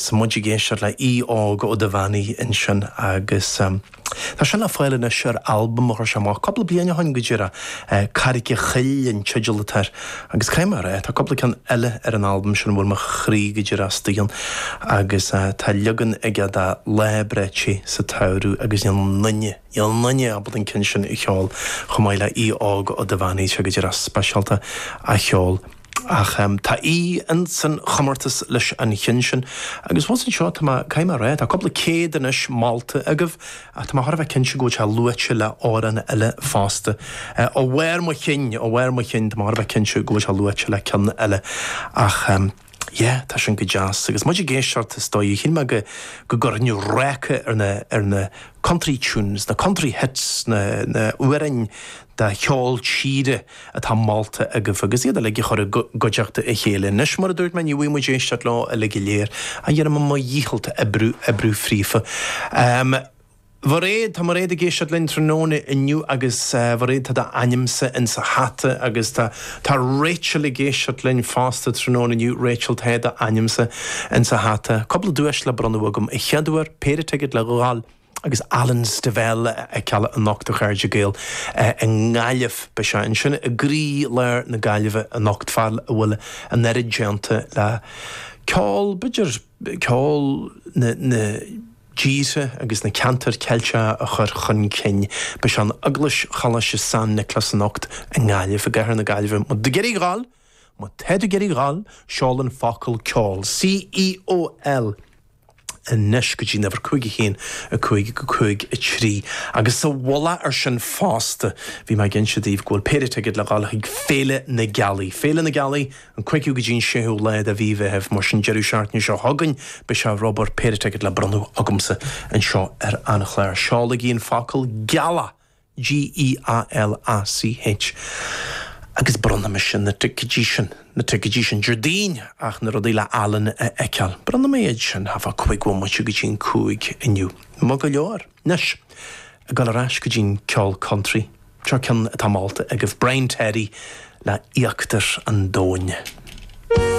Tá muid ag éisteacht le Aodh Óg Ó Duibheannaigh ansin agus tá sé le fáil anois ar albam a chuir sé amach cúpla bliain ó shin go díreach, Carraig a' Choill an teideal atá air agus caithfidh mé a rá, tá cúpla ceann eile ar an albam sin a bhfuil mo chroí go díreach istigh ann agus tá leagan aige de Lá breá te sa tsamhradh agus níl aon duine, níl aon duine ábalta an ceann sin a cheol chomh maith le Aodh Óg Ó Duibheannaigh, sé go díreach speisialta á cheol. Ach tá Aodh ins an chomórtas leis an cheann sin. Agus fós anseo, tá mé, caithfidh mé a rá, tá cúpla céad anois molta agaibh ach tá mé thar a bheith cinnte go bhfuil sé luaite le amhrán eile fosta. Ó bharr mo chinn, ó bharr mo chinn, tá mé thar a bheith cinnte go bhfuil sé luaite le ceann eile. Ach yeah, tá sin go deas. Agus muid ag éisteacht, is dóigh, shíl mé go go gcuirfinn ráca ar na ar na country tunes, na country hits, na na amhráin, de cheol tíre atá molta agaibh agus iad uilig a chur i gcuideachta a chéile. Anois, mar a dúirt mé, ní bhfaighidh muid éisteacht leo uilig go léir, ach dhéanfaidh mé mo dhícheall oibriú, oibriú fríofa. Mairéad, tá Mairéad ag éisteacht linn tráthnóna inniu agus Mairéad, tá d'ainmse insa hata agus tá, tá Rachel ag éisteacht linn fosta tráthnóna inniu, Rachel, tá d'ainmse insa hata. Cúpla duais le bronnadh agam. An chéad uair, péire ticéad le dhul. agus Alan Stivell a fheiceáil anocht a chairde Gael i nGaillimh. Beidh sé ansin i gcroí lár na Gaillimhe anocht, fear a bhfuil an oiread déanta le ceol, b'fhéidir, ceol na dtíortha agus na ceantair Ceilteacha a chur chun cinn. Beidh sé in Eaglais Choláiste San Nioclás anocht i nGaillimh, i gcathair na Gaillimhe. Má tá tú ag iarraidh a dhul! Má tá tú ag iarraidh a dhul, seol an focal ceol, C-E-O-L, anois go dtí'n uimhir 5 1, 5, 5, 3. Agus sa mhullach ar sin fosta, bhí mé ag inse daoibh go bhfuil péire ticéad le dhul chuig Féile na Gealaí. Féile na Gealaí, an cúigiú go dtí'n séú lá de mhí Mheithimh, mar sin deireadh seachtaine seo chugainn beidh sé ar obair, péire ticéad le bronnadh agamsa anseo ar an chlár. Seolaigí an focal 'Gealach'! G-E-A-L-A-C-H, Agus bronnfaidh mise na ticéidí sin, na ticéidí sin, Déardaoin ach na rudaí le Alan a fheiceáil. Bronnfaidh mé iad sin, thart fá chúig bhomaite go dtí an cúig inniu. Maith go leor. Anois, ag dul ar ais go dtí an ceol country. Seo ceann atá molta agaibh, Brian Terry le Íochtar an Domhain.